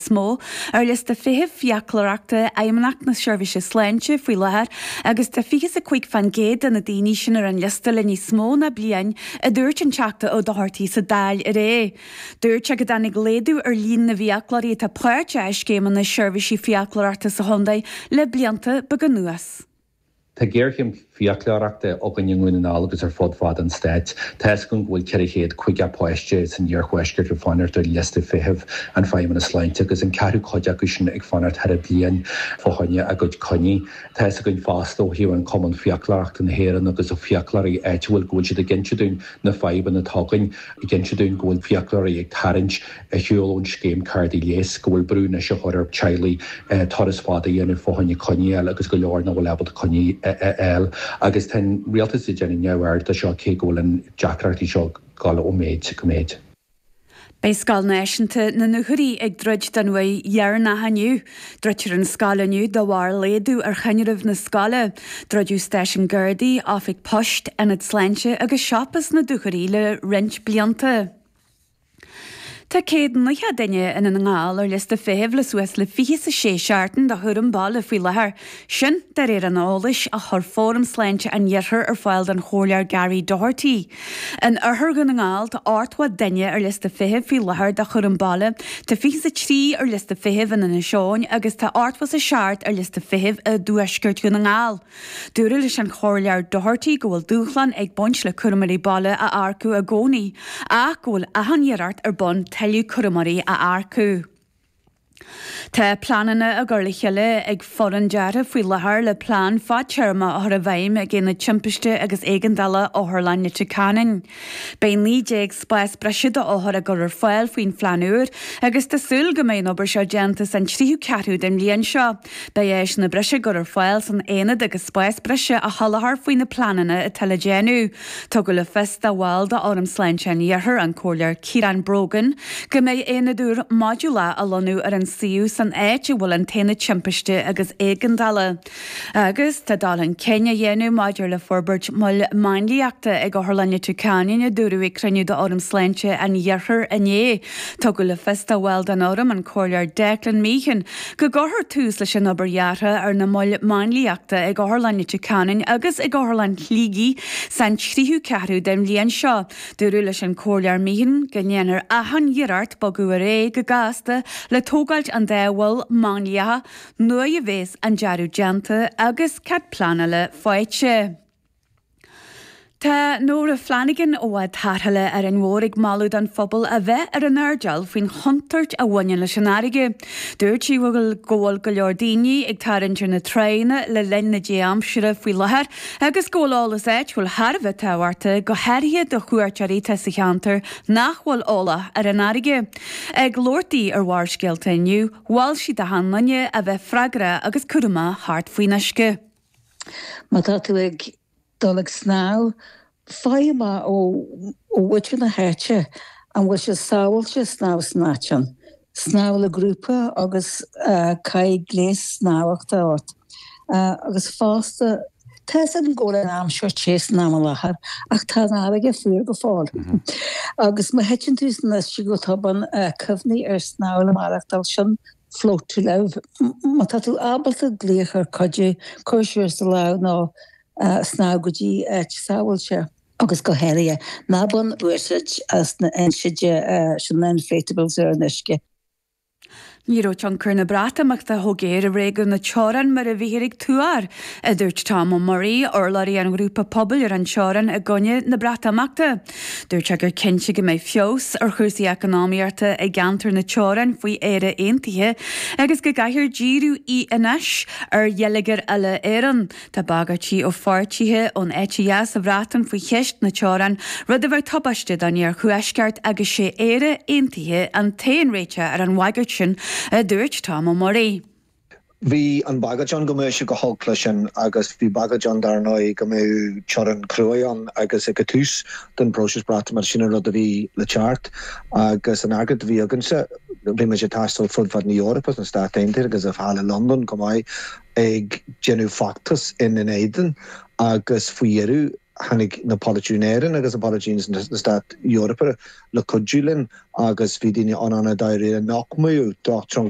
is mó, ar liosta feithimh fiaclóireachta Fheidhmeannacht na Seirbhíse Sláinte faoi láthair, agus tá fiche 's a cuig fán gcéad de na daoine sin ar an liosta le níos mó ná bliain, a dúirt an Teachta Ó Dochartaigh sa Dáil aréir. Dúirt sé go dtáinig laghdú ar líon na bhfiaclóirí atá páirteach i scéimeanna seirbhísí fiaclóireachta sa chontae le blianta beaga anuas. Tá géarchéim fiaclóireachta againn i nDún na nGall agus ar fud fad an stáit. Tá's agam go bhfuil 450 páiste san iarthuaisceart ag fanacht ar liosta feithimh an Feidhmeannas Sláinte agus an ceathrú cuid acu sin ag fanacht thaire bliain fá choinne a gcuid coinní. Tá's againn fosta ó thaobh an Cumann Fiaclóireachta na hÉireann agus fiaclóirí áitiúil go bhfuil siad ag inse dúinn na fadhbanna atá againn, ag inse dúinn go bhfuil fiaclóirí ag tarraingt, ar shiúl ón scéim cártaí leighis, go bhfuil brú anois á chur ar theaghlaigh turas fada a dhéanamh fá choinne coinneáil agus go leor nach bhfuil ábalta coinní a fháil. Agus tá an rialtas ag déanamh neamhaird de seo cé go bhfuil an deacrachtaí seo ag dul ó mhéid go méid. Beidh Scoil Náisiúnta na Dúchoraidh ag druid don uair dheireanach inniu. Druidfear an scoil inniu de bharr laghdú ar thinreamh na scoile. Druideadh stáisiún Gardaí, oifig poist, ionad sláinte agus siopa sa Dúchoraidh le roinnt blianta. Tá céad naocha duine i nDún na nGall ar liosta feithimh le suas le fiche 's a sé seachtain de chúram baile faoi láthair, sin de réir an eolais a chuir Fóram Sláinte an Iarthair ar fáil don Chomhairleoir Gary Doherty. In Oirthear Dhún na nGall tá ochtó duine ar liosta feithimh faoi láthair de chúram baile, tá fiche 's a trí ar liosta feithimh in Inis Eoghain agus tá ochtó 's a seacht ar liosta feithimh i dTuaisceart Dhún na nGall. Dúradh leis an Chomhairleoir Doherty go bhfuil dúshlán ag baint le cúramóirí baile a earcú i gcónaí ach go bhfuil achan iarracht ar bun tuilleadh cúramóirí a earcú. Tá pleananna á gcur le chéile ag foireann deartha faoi láthair le plean fadtéarma a chur i bhfeidhm ag Aonad Timpiste agus Éigeandála Otharlann Leitir Ceanainn. Beidh 19 spás breise d'othair á gcur ar fáil faoin phlean úr agus tá súil go mbeidh an obair seo déanta san tríú ceathrú den bhliain seo. Beidh áiseanna breise á gcur ar fáil san aonad agus spás breise á sholáthar faoi na pleananna atá le déanamh. Tugadh le fios do bhall d'Fhóram Sláinte an Iarthair, an Comhairleoir Ciarán Brogan, go mbeidh aonad úr modúlach á lonnadh ar an suíomh san áit a bhfuil an t-aonad timpiste agus éigeandála. Agus tá dul chun cinn á dhéanamh maidir le forbairt mol máinliachta ag Otharlann Leitir Ceanainn, a dúradh ag cruinniú d'Fhóram Sláinte an Iarthair inné. Tugadh le fios do bhall den Fhóram, an Comhairleoir Declan Meehan, go gcuirfear tús leis an obair dheartha ar na moil máinliachta ag Otharlann Leitir Ceanainn agus ag Otharlann Shligigh san tríú ceathrú den bhliain seo. Dúradh leis an Chomhairleoir Meehan go ndéanfar achan iarracht bogadh ar aghaidh go gasta le tógáilt an dá mhol máinliachta, Nuair a bhéas an dearadh déanta agus cead pleanála faighte. Tá Nóra Flanagan ó Bhád Tarrthála Árainn Mhór, ag moladh don phobal a bheith ar an airdeall faoin chontúirt a bhaineann leis an fharraige. Dúirt sí go bhfuil go leor daoine ag tarraingt ar na tránna le linn na dea-aimsire faoi láthair agus go bhfuil eolas áitiúil thar a bheith tábhachta, go háirithe do chuairteoirí atá sa cheantar nach bhfuil eolach ar an fharraige. Ag labhairt di ar Bharrscéalta inniu, Mhol sí do shnámhaithe a bheith freagrach agus cúramach thart faoin uisce. Má tá tú ag dul ag snámh, faigh amach ó mhuintir na háite an bhfuil sé sábháilte snámh san áit sin. Snámh le grúpa agus caith gléas snámhachta ort. agus fosta, tá 'fhios agam go bhfuil an aimsir te san am i láthair ach tá an fharraige fuar go fóill agus má thiteann tú san uisce go tobann, cuimhnigh ar snámh le maireachtáil, sin float to live. Má tá tú ábalta glaoch ar chuidiú, cuir suas do lámh nó snámh go dtí áit sábháilte. Agus go háirithe, ná bain úsáid as na inséidte, sin na inflatables, ar an uisce. Ní raibh tionchar na Breatimeachta chomh géar i réigiún na teorann mar a bhíthear ag tuar, a dúirt Tom Ó Muirí, urlabhraí an ghrúpa pobail ar an teorann i gcoinne na Breatimeachta. Dúirt sé gur cinnte go mbeadh feabhas ar chúrsaí eacnamaíochta i gceantar na teorann faoi Éire Aontaithe agus go gcaithfear díriú anois ar gheilleagar uile Éireann. Tá bagairtí ó pháirtithe ón eite dheas sa Bhreatain faoi cheist na teorann, rud a bheadh tubaisteach don iarthuaisceart agus sé Éire aontaithe an t-aon réiteach ar an bhagairt sin, a dúirt Tom Ó Muirí. Bhí an bhagairt ann go mbeadh sé go holc leis sin agus bhí bagairt ann, dar ndóigh, go mbeadh teorainn chruaidh ann agus ag tús den phróiseas Breatimeachta, sin an rud a bhí le teacht agus an freagra a bhí againnse, bhí muid ag taisteal fud fad na Eorpa, sna Stáit Aontaithe agus thall i Londain chomh maith. ag déanamh feachtas ina n-éadan agus faoi dheireadh tháinig na polaiteoirí in Éirinn agus na polaiteoirí sna stáit Eorpa le cuidiú linn agus bhí daoine ann an-dáiríre nach mbeadh teorainn